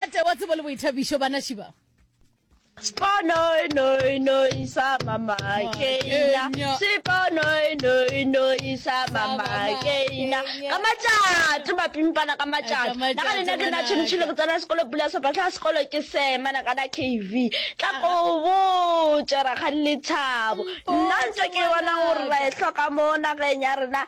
Tate wa tsebo le boithabišo banaši ba. Sponoi noi noi sa mama keina Sponoi noi noi sa mama keina Ka matšatši mapimpana ka matšatši Na ga lena ke na tšhinitšhile ke tsena sekolo pula sopa tla sekolo ke sema na kana KV Tla go botša rakgadi lethabo Nna ntse ke bona gore ra e hloka mo nageng ya rena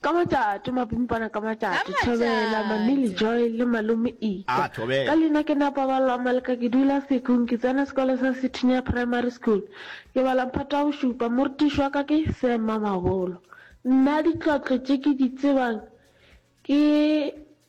Ka matšato, mapimpana ka matšato, Thobela, Mamili Joy le Malome Ika. Ka leina ke nna Paballo Amaleka, ke dula Sekgong, ke tsena sekolo sa Sethunya Primary School. Ke bala mphato wa bošupa, morutiši wa ka ke Sir Mmamabolo. Nna ditlotlo tše ke di tsebang ke.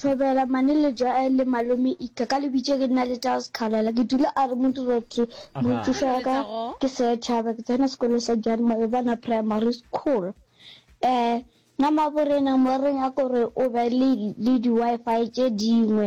Thobela, Maneleja a le malome Ika ka lebitše ke nna le Charles Khalala ke dula a re modiro ke moithuša wa ka ke Sir Thaba ke tsena sekolo sa Jan Malebana Primary School eh na maborena moreng a kore o be le le di-wi-fi tše dingwe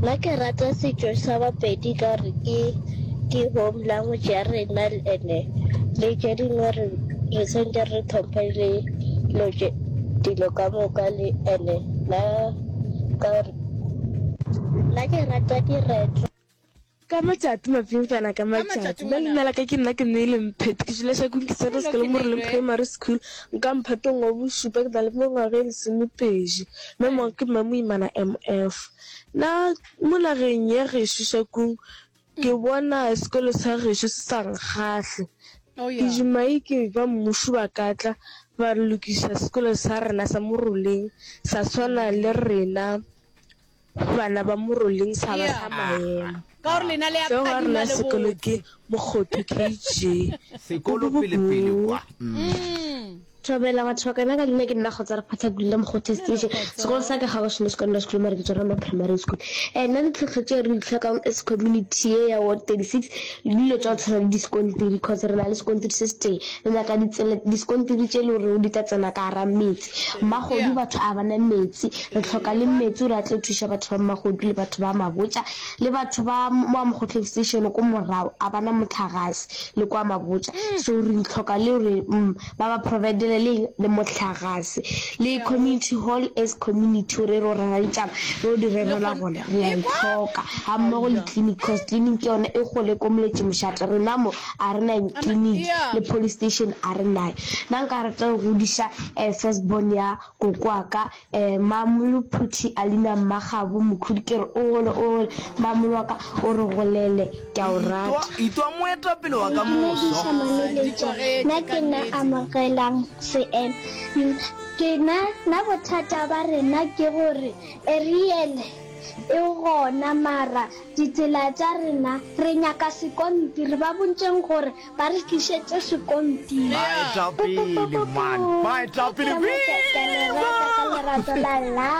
Nna ke rata setšo sa Bapedi ka gore ke ke home language ya rena ene le tše dingwe re re sentse re tlhomphe le lo tše dilo ka moka le ene na ka gore nna ke rata diretlo Ka matšatši mapintsana ka matšatši ba leina la ka ke nna ke ne le mphete ke jula shakong ke sata sekolo mo releng primary school nka mphatong wa bošupa ke na le mengwaga e lesomepedi mme mo ke mma moimana mf na mo nageng ya gešo shakong ke bona sekolo sa gešo se sa nkgahle oh, ke jumai ke ba mmušo ba katla ba re lokisa sekolo sa rena sa moroleng sa tshwana le rena Bana ba Moroleng Saba sa Maemo. Ge ba rena sekolo ke Mokgotho KG. Sekolo pele pele kwa. Thobela wa thoka na ka nne ke nna kgotsa re phatha gulile mo go test ise sekolo sa ka ga go shine sekolo sekolo mare ke tswa mo primary school eh nna di tlhotlho tse re tlhokang as community ye ya ward 36 le dilo tsa tshwana le di skontiri because re na le skontiri se se teng re nyaka ditsela di skontiri tse le gore di tla tsena ka ara metse Mmagodu batho a ba na metsi, re tlhoka le metsi gore a tlo thuša batho ba Mmagodu le batho ba Mabotja le batho ba wa Mokgotlo Extension ko morago a ba na motlhagase le kwa Mabotja so re tlhoka le gore mm, ba ba providele le eng le motlhagase le community hall as community gore re o rera ditšaba re o di rerela gona re a e tlhoka ga mmogo le clinic cause clinic ke yone e gole ko moletše mošate rena mo a re na clinic le police station a re nayo Na nka rata go godiša um first born ya koko wa ka um Mmamolo Phuthi Alina Mmagabo Mokhudi ke re o gole o gole Mmamolo wa ka o re golele ke a o rata. Itwa moetapele wa ka moso. Dumedisha mameletša na ke na amogelang seemo ke na na bothata ba rena ke gore Ariel e gona mara ditsela tša rena re nyaka sekontiri ba bontšeng gore Ba re tlišetše sekontiri. Baetapele man, baetapele Ke mo ke- ke le rata ka lerato la la.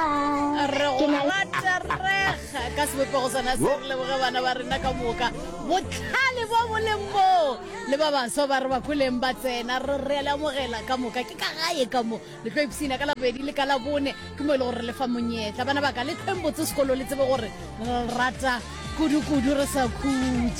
re Ke go na le- raterega ka sebopego sona se re leboge bana ba rena ka moka botlhale bo bo leng moo le ba baswa ba re ba koleng ba tsena re re a le amogela ka moka ke ka gae ka mo le tlo ipsina ka labedi le ka labone ke mo e le gore re lefa monyetla bana ba ka le tlhweng botse sekolo le tsebe gore re rata kudu-kudu re sa khutse